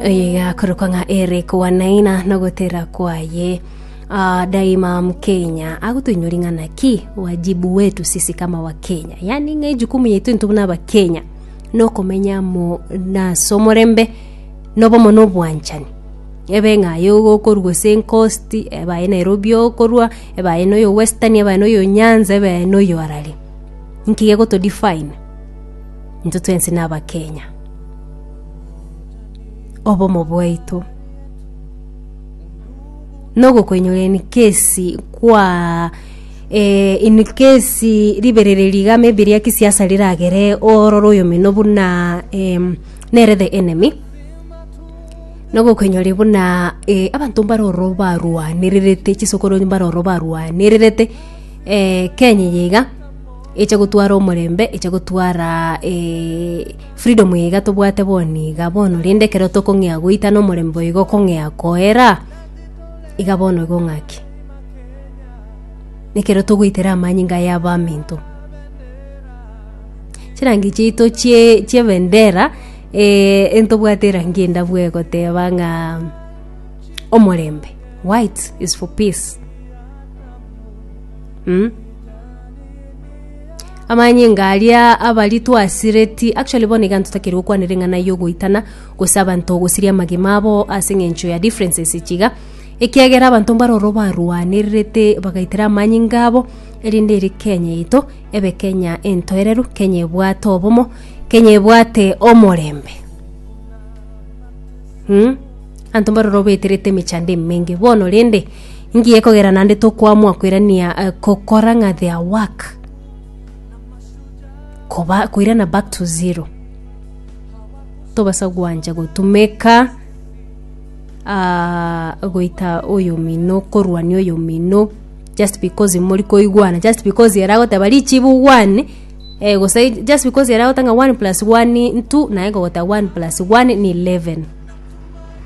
Eye igakorokwa ng'a ere koanaina nogotera kwaye. Uh, daima mkenya agotoinywa ring'ana ki wajibu wetu sisi kama wa kenya yani ng'a ejukumu yaitu intu buna abakenya nokomenya mo nase omorembe nobomo na obwanchani ebe ng'a aye okorwa ase encost ebe aye nairobi okorwa ebe aye noyo western ebe aye noyo nyanza ebe aye noyo arari nki gegoto define intwe twensi na abakenya obomo bwaito, na ogokoinyora in case kwa eh, in case ribereri riga maybe ria kisiasa riragere ororo oyomino buna em, nere the enemy na ogokoinyora buna eh, abanto mbare ororo barwanererete chisokoro mbare ororo barwanererete eh, Kenya eye iga eche gotwara omorembe eche gotwara eh, Freedom iga tobwate bono iga bono rende ekero tokong'ea goita nomorembe oiga okong'ea koera iga bono igo ng'aki? Nekero togoitera amanyinga aya abaminto. Chirangi chiaito chie chiebendera entobwate erangi endabwo egoteba ng'a omorembe, white is for peace. Amanyinga aria abari twasireti, actually bono iga ntotakeire gokwanera eng'ana y'ogoitana gose abanto gosiria amagima abo ase eng'encho ya differences echi iga, ekiagera abanto mbare ororo barwanererete bagaitera amanyinga abo, erinde ere Kenya yaito ebe Kenya entoereru, Kenya ebwate obomo, Kenya ebwate omorembe. Mh, abanto mbare ororo baeterete emechando emenge bono rende. Inki gekogera naende tokoamwa koirania eh, kokora ng'a their work koba koirana back to zero tobasa gwancha gotumeka ah, goita oyomino korwania oyomino just because mori koigwana just because ere agoteba richibu one eh, gose just because ere agotanga one plus one ntu naye gogoteba one plus one ni eleven